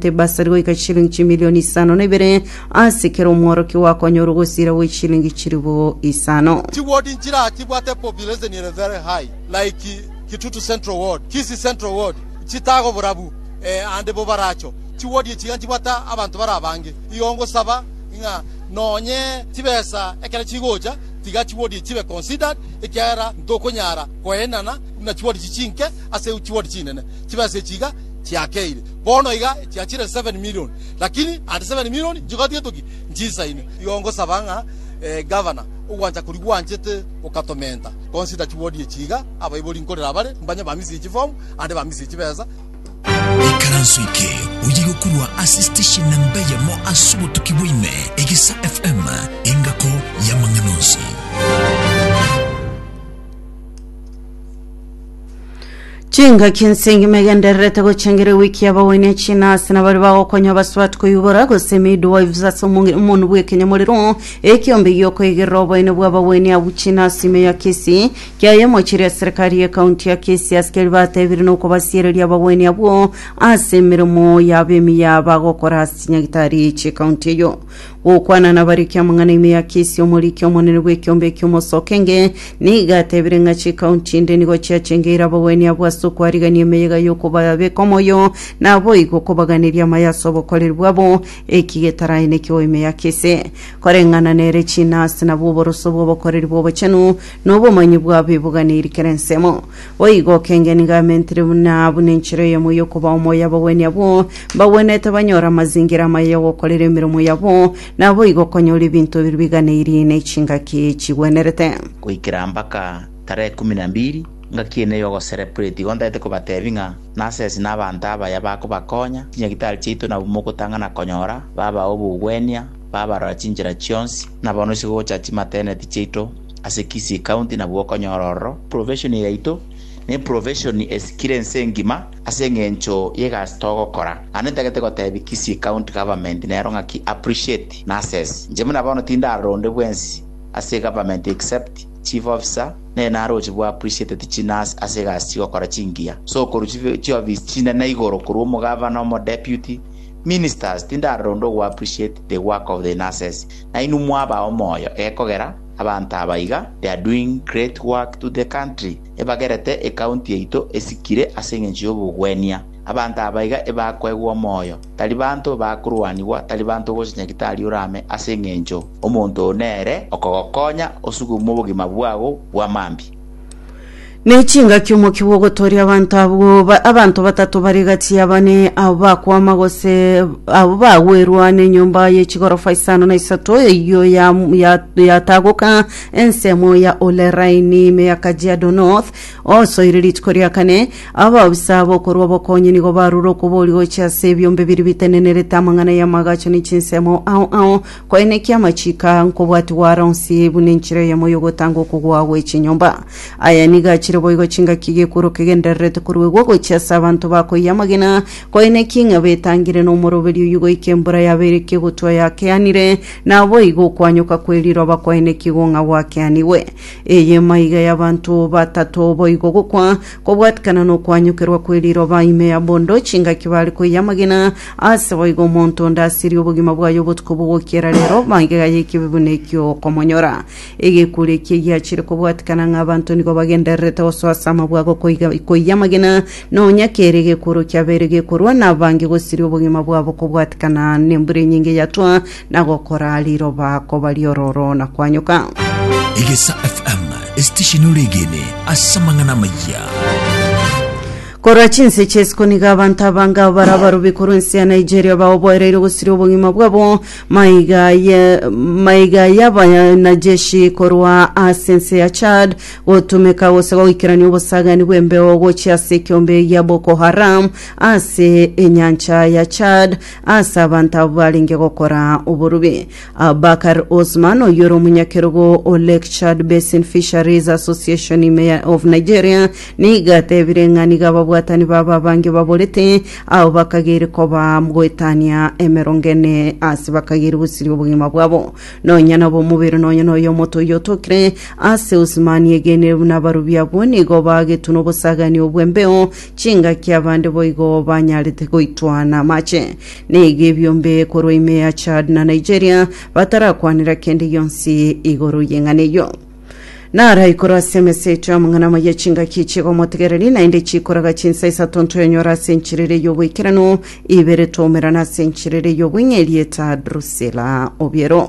Ebasari goika chilingi chimilioni isano na ibere ase kera omworokia oakonyorwa gosira gwe chilingi chilifu isano. Chi ward nchira chibwate population ere very high like Kitutu Central ward, Kisii Central ward, chitago borabu eh and bobaracho. Chi ward echi iga nchibwate abanto bare abange. Igo ngosaba ng'a nonye chibesa ekero chigocha tiga chi ward echi chibe considered ekiagera ntokonyara koenana buna chi ward echi chinke ase chi ward chinene. Chibesa echi iga chiakeire. Bono iga chiachire seven million, lakini ande seven million nchigatietoki nchisaine. Igo ngosaba ng'a Gavana, ogwancha koria gwanchete gokatomenta, consider chiwodi echi iga, abaibori nkorera abare, mbanye bamisie chifomu, ande bamisie chibesa. Ekaranso eke oye gokurwa ase station namba eyemo ase obotuki bwa ime, Egisa FM, engako y'amang'ana onsi. chingaki nsengima egendererete gochengera ewiki y'abaoini echina ase nabari bagokonya abaswati koyubora gose midwives ase omonge- omonu bw'ekenyamorero ekiombe giokoigerera oboene bw'abaoini abwo china ase ime ya kisii kiaye omochiri ya serikari y'ekaunti ya kisii ase keria batebire nokobasiereria abaoini abwo ase emeremo yabo emiya bagokora ase chinyagitari chi'ekaunti eyo gokwana nabarikia amang'ana ime ya kesi omoriki omonene bw'ekiombe eki'omosoke nge niga atebire ng'a chikaunti inde nigo chiachengeire abagweni abwo ase okwarigania emeyega y'okobabeka omoyo naboigo okobaganeria amaya ase obokoreri bwabo eki getarae nekioo ime ya kesi koreng'ana nere chinasi nabwo oboroso bw'obokoreri bw'obochenu nobomanyi bwabo eboganeiri kera ensemo Boigo okengeni gamentire buna abwo nenchera eyemo yokoba omoyo abagwenia abwo mbagwenete banyore amazingira amaya yogokorera emeremo yabo, naboigo okonyora ebinto ebiria biganeirie ne chingaki chigwenerete. Goikera mpaka tarehe kumi na mbiri ngaki ene yogo celebrate igo ntaete kobatebi ng'a nasesi na abanto abaya bakobakonya chinyagitari chiaito nabwo mogotang'ana konyora babae obogwenia babarora chinchera chionsi na bono isegocha chimateneti chiaito Ase Kisii County nabwo okonyora ororo, profession yaito ne profession esikire ense engima ase eng'encho y'egasi togokora. Naende ntagete gotebia Kisii County Government nero ng'aki appreciate nurses. Inche buna bono tindaronde bwensi ase Government except Chief Officer nere naroche bwa appreciateti chinurse ase egasi chigokora chingiya. So okorwa chibe chiofisi chinene igoro korwa omogavana, omodeputy, ministers tindaronde ogo appreciate the work of the nurses. Nainwe mwaba omoyo egekogera abanto aba iga, they are doing great work to the country, ebagerete ecounty yaito esikire ase engencho yobogwenia. Abanto aba iga ebakoegwa omoyo, tari banto bakorwanigwa, tari banto gocha nyagitari orame ase engencho omonto oo nere okogokonya osugume obogima bwago bwa mambia. Nechingaki omokia bw'ogotooria abanto abwo ba- abanto batato bare gati ya bane abo bakwama gose abo bagwerwa nenyomba ye chigorofa isano na isato eyio ya- ya- yatagoka ensemo ya Ole Raini ime ya Kajiado North osoire rituko ria kane. Abaofisa bokorwa obokonyi nigo barure okoboria gochia ase ebiombe biria bitenenerete amang'ana y'amagacho ne chinsemo ao ao. Koenekia amachiiko aa nkobwatigwa aro onsi buna enchera eyemo y'ogotanga okogwa gwe chinyomba. Aya nigo achire boigo chingaki gekworo kegendererete koruegwa gochia ase abanto bakoiya amagena, koenekia ing'aba etangire na omoroberi oyio goika embura yabeire ekegotwa yakeanire, naboigo okwanyoka kwe riroba kwaenekigwe ng'a gwakeanigwe. Eye maiga y'abanto batato boigo gokwa, Kobwatikana nokwanyokerwa kwe riroba ime ya bondo, chingaki bare koyia amagena, ase boigo omonto onde asirie obogima bwaye obotuko bogokiera rero, bangega y'ekibe buna ekio okomonyora. Egekuri ekie giachire kobwatikana ng'a abanto nigo bagendererete gosoa ase amabwago koiga koyia amagena, nonya kere egekuro kiabeire gekorwa, nabange gosiria obogima bwabo kobwatikana nembura enyinge yatwa, na gokora riroba koba riororo na kwanyoka. Egesa FM, esitesheni ore egene ase amang'ana amayia. Korwa chinse chesiko nigo abanto abanga bara abarubi korwa ense ya Nigeria baoboereire gosiria obogima bwabo maiga ye- maiga y'abanajeshi korwa ase ense ya Chad gotumeka gose goikerania obosagani bw'embeo gochia ase ekiombe gia Boko Haram ase enyancha ya Chad Ase abanto abwo barenge gokora oborubi, Abubakar Osman, oyio ore omonyakerogo o Lake Chad Basin Fisheries Association ime ya- of Nigeria, nigo atebire ng'a nigo ababwatani babo abange baborete, abo bakageire koba goetania emerongo ene ase bakageire gosiria obogima bwabo. Nonya nabo omobere nonya noyo omoto oyio otokire ase Osman egenire buna abarubi abwo nigo bagetwe nobosagani obw'embeo Chingaki abande boigo banyarete goitwana amache na iga ebiombe korwa ime ya Chad na Nigeria batarakwanera kende gionsi igoro y'eng'ana eyio. Naraikore ase emeseto y'amang'ana amaya chingaki chi'ogomotegereri, naende chikoraga chinsa isato ntoyonyore ase enchiriri y'oboikeranu, ibere twaumerana ase enchiriri y'obweng'eria eta Drusilla obiero.